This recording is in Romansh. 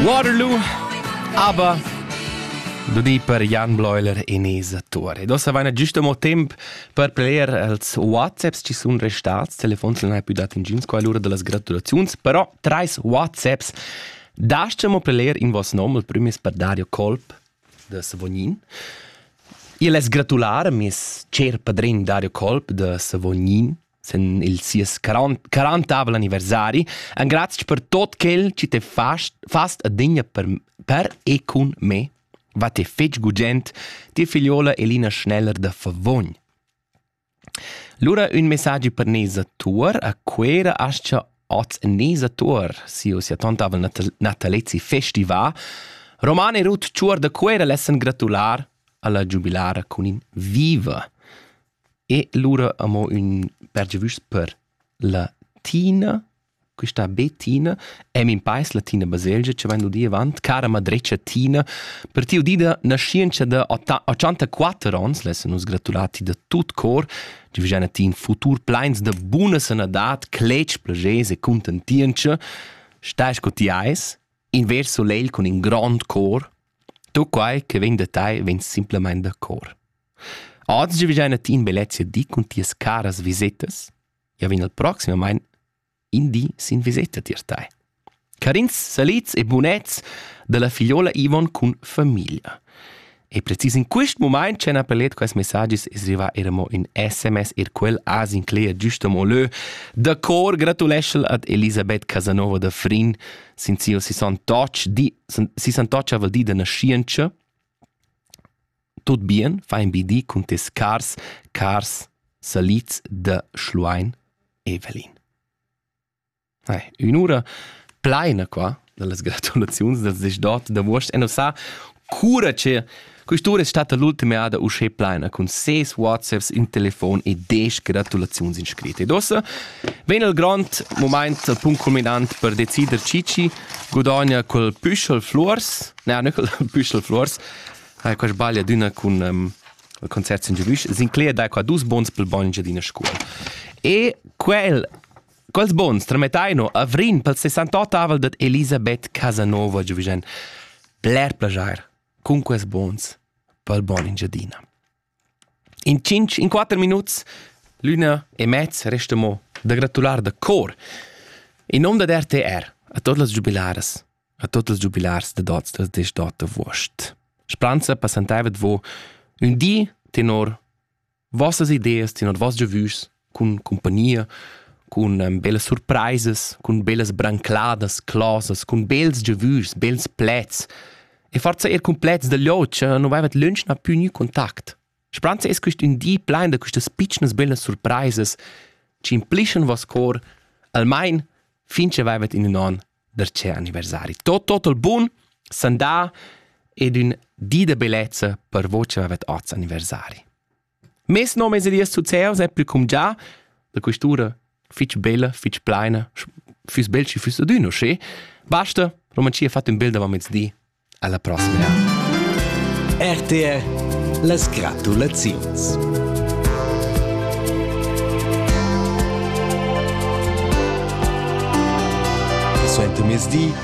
Waterloo, aber du di per Jan Bleuler Enesa Tore. Dossa vaina giusto mo temp per player els WhatsApps ci sun restats, telefons non hai più dato ingiuns qua l'ura delle gratulazioni, però trais WhatsApps dasciamo player in vos nom, il primo è per Dario Colp de Savognin. Io les gratulare, mes cer padrin Dario Colp de Savognin, sen il sies 40 anniversari engrazia per tot quel chi te fast fast adegna per per e cun me va te fetg gugent ti figliola Elina Schneller da Favogn Lura un messaggi per Nesa Tuor a quera ascia oz Nesa Tuor si o sia tontavel natalezi festival Romane Ruth Ciuor da Quera lessen gratular alla giubilara cun in viva E lura amo ün per giavüschs per la Tina, quista be Tina, e min pais la Tina Baselgia chi vain udì avant, cara madretscha Tina, per ti udida naschientscha da ochanta quatter ons, lessa nus gratular ti da tut cor, ti vegina ti in futur pleins da buna sanadad, cletg, plagers e cuntentientscha, stai sco ti eis, in ver solegl cun in grand cor, tu quai che vegn da tai vegn simplamain da cor. Oz giavischein a ti in biletg di cun tias caras visetas. Ja vegn el proximamein in di sin viseta tier tei. Carins salits e bunets dalla figliola Ivon cun famiglia. E precis in quist mumaint c'han appelet quels messagis es rivà era mo ün SMS er quel as incleja giust amo lö. Da cor gratuleschel ad Elisabeth Casanova da Frin, sin sia 68 di, si 68 val di da naschientscha. Tut bien fa in bi di cun tes cars, cars salids da Schluein Evelin. Hey, ün'ura pleina qua dallas gratulaziuns da ses dot da vuost e sa cura che quest'ura è stata l'ultima ada uschè pleina cun ses WhatsApps, in telefon e desch gratulaziuns in scrit. Ed ossa vegn il grond moment, il punct culminant per decider Cici gudogna col püschel flors, ne, ne col püschel flors, Ha quest sbagl adina cun um, concert sin giavisch. Sinclair dà qua dus bons pel bagn d'ina scuol. E quel Quels bons tramettaino a Vrin pel 68avel dat Elisabeth Casanova giovisen bler plagiar cun quels bons pel bon in giadina. In tschintg, in quatter minuts, l'üna e mez resta mo da gratular da cor in nom dad RTR a tot las giubilaras, a tot las giubilars da dots da destot avuost. Splanza passantaivet vo ün di tenor vossas ideas, tenor voss giavüschs cun cumpagnia, cun um, bellas surpraisas, cun bellas brancladas, closas, cun bels giavüs, bels plets. E forza er cun plets da liocia non vaivat lönch na più gnü contact. Spranza es quist ün di plein da quistas pitschnas bellas surpraisas ci implischan vos cor almain fin che vaivat in ün on darcè anniversari. Tot total bun, sandà ed ün di da bellezza per voi che vaivat oz anniversari. Mes nom es Elias Zuzeus e plü cumgià da quist'ura fich bella, fich plaina, füss bel schi füss adüna usché. Basta, Romanzia ha fatto un bel davant Alla prossima ja. RTR Les gratulaziuns. Suente mezdi